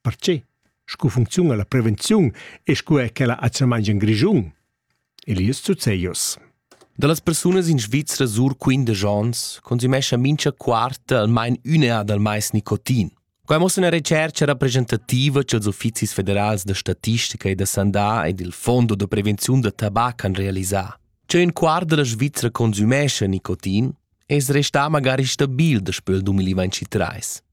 Perche? Scu funcziuna la prevenziun e scu è quella atgnamaing in Grischun? Elias Zuzzeios Da las persunas in Svizra sur quindesch ons consumescha mincha quarta almain ün'eà dal mais nicotin. Quai mossa üna retschercha rappresentativa cha'ls uffizis federals da statistica e da sandà ed il Fondo da prevenziun da tabac han realisà. Che ün quart da la Svizra consumescha nicotin es restà magari stabil daspö il 2023.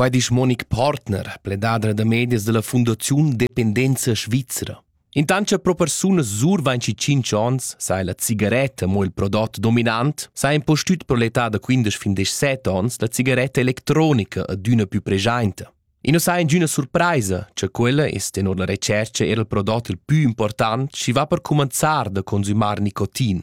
Quai disch Monique Partner, pledadra da medias della Fundaziun Dependenza Svizzera. Intant cha pro persunas sur 25 ans, sai la cigaretta mo il prodot dominant, s'ha impostüt pro l'età da 15 fin 17 ans la cigaretta electronica adüna più preschainta. E non sai ingüna surpraisa, cha quella es tenor la retschercha era il prodot il pü important, chi va per cumanzar da consumar nicotin.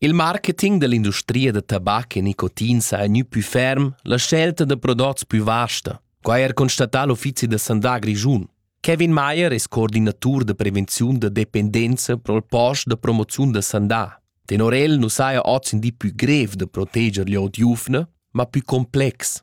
Il marketing dell'industria da tabac e nicotin sa è gnü pü ferm, la scelta da prodots pü vasta. Quai ha er constatà l'uffizi da sandà grischun. Kevin Mayer es coordinatur da prevenziun da dependenza pro'l post da promoziun da sandà. Tenor el nu saja oz in di pü grev da proteger gl'ot giuvna, ma pü complex.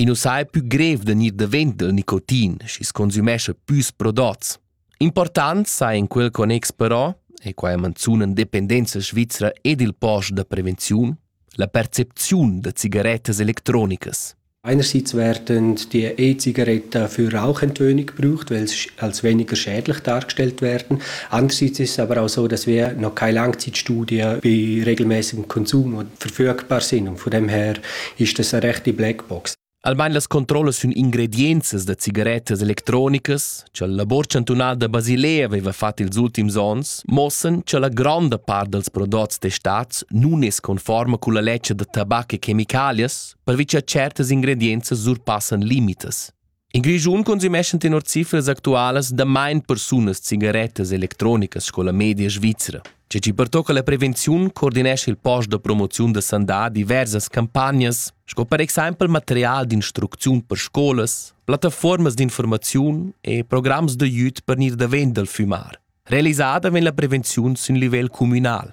I nu saja pü grev da gnir davent dal nicotin, schi's consümescha püs prodots. Important saja in quel connex però, e qua manzuna dependenza svizra ed il post da prevenziun, la percepziun da cigarettas electronicas. Einerseits werden die E-Zigaretten für Rauchentwöhnung gebraucht, weil sie als weniger schädlich dargestellt werden. Andererseits ist es aber auch so, dass wir noch keine Langzeitstudie bei regelmäßigem Konsum und Verfüg parsinum von dem her ist es eine rechte Blackbox. Almain las controllas sun ingredienzas da cigarettas electronicas cha la labor chantunala da Basilea aveva fat ils ultims ons mossan cha la gronda part dals prodots testats nun es conforma culla ledscha da tabac e chemicalias pervi cha tschertas ingredienzas surpassan limitas. In Grischun consumeschan tenor cifras actualas damain persunas cigarettas electronicas sco la media svizra. Tge che pertocca la prevenziun coordinescha il post da promoziun da sandà diversas campagnas, sco per exempel material d'instrucziun per scolas, plattaformas d'informaziun e programs da jut per gnir davent dal fumar. Realisada vegn la prevenziun sin livel communal.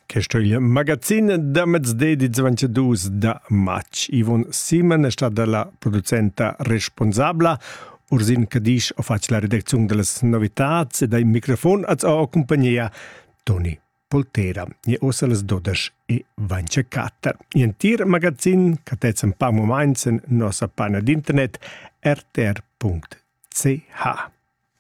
Questo è il magazzin da mezdi di 22 da matg. Ivon Siemann è stata la producenta responsabla. Ursin Cadisch ha fatto la redazione delle novità e dai microfon a sua compagnia Toni Poltera. E ossa les 12 e 24. In tir magazzin che tezzan pa moments in nossa pagina d'internet rtr.ch.